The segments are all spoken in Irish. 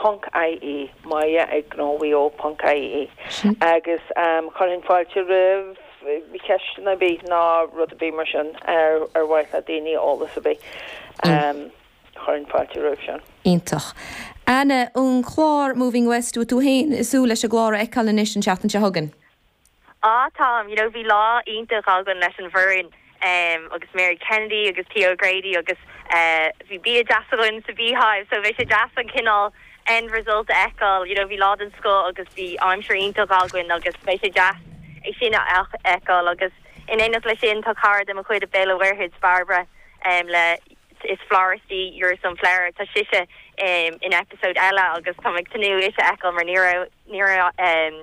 ponc ie, maille ag Gnó Mhaigh Eo ponc ie agus chuirfinn fáilte roimh cheisteanna ar bith ná rud ar bith mar sin ar ar mhaith le daoine eolas ar bith chuirfinn fáilte roimh sin. Iontach. Anna, an clár Moving West, bhfuil tú féin ag súil leis an gclár a fheiceáil anois an tseachtain seo chugainn? Á, táim, you know bhí lá iontach againn leis an bhfoireann em agus Mary Kennedy agus Theo O'Grady agus eh bhí bia deas againn sa Beehive so beidh sé deas an cineál end result a fheiceáil you know bhí lá den scoth agus bhí aimsir iontach againn agus beidh sé deas é sin a fheiceáil agus in éineacht leis sin tá cara de mo chuid as Béal an Mhuirthead, Barbara em le is florist í you're a sunflower tá sise em in episode eile agus táim ag tnúth ise a fheiceáil mar ní raibh ní raibh eh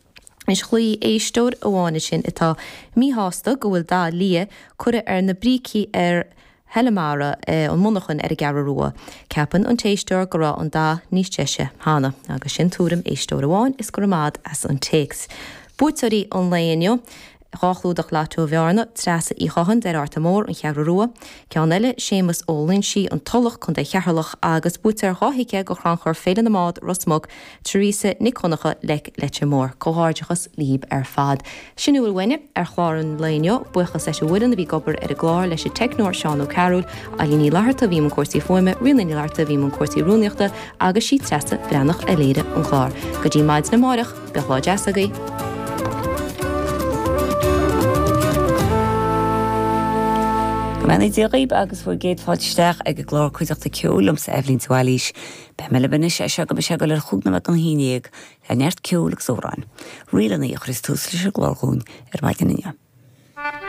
Is ghlaoigh éisteoir amháin ansin atá míshásta go bhfuil dath liath curtha ar na brící ar Heileamara an Mhonarchain ar an gCeathrú Rua. Ceapann an t-éisteoir go raibh an dath níos deise cheana. Agus sin tuairim éisteoir amháin is go raibh maith agat as an téacs. Buaiteoirí an lae inniu. Dhá chlúdach Lotto Bhearna, Treasa Uí Chotháin, Doire Fhatharta Mór, An Cheathrú Rua. Ceann eile, Séamus Ó Loinsigh, An Tulach, Co. Cheatharlach, agus buaiteoir dhá thicéad go chrannchur Féile na mBád, Ros Muc, Theresa Nic Dhonncha, Leic Leitir Móir. Comhghairdeachas líb ar fad. Sin a bhfuil uainne ar chlár an lae inniu. Buíochas leis an bhfoireann a bhí ag obair ar an gclár, leis an teicneoir Seán Ó Cearúil, Ailín Ní Fhlatharta a bhí i mbun cúrsaí fuaime, Ríona Ní Fhlatharta a bhí i mbun cúrsaí rúnaíochta agus sí Treasa Bhreathnach a léirigh an clár. Go dtí maidin amáireach. Bíodh lá deas agaibh! Go mbeannaí Dia dhaoib agus bhur gcéad fáilte isteach ag an gclár Cuideachta Ceoil liomsa Eibhlín de Bhailís. Beidh mé libh anois as seo go mbeidh sé ag dul ar chúig nóiméad don haon déag le neart ceoil agus amhrán, ríleanna a chuirfidh tús leis an gclár dhúinn ar maidin inniu.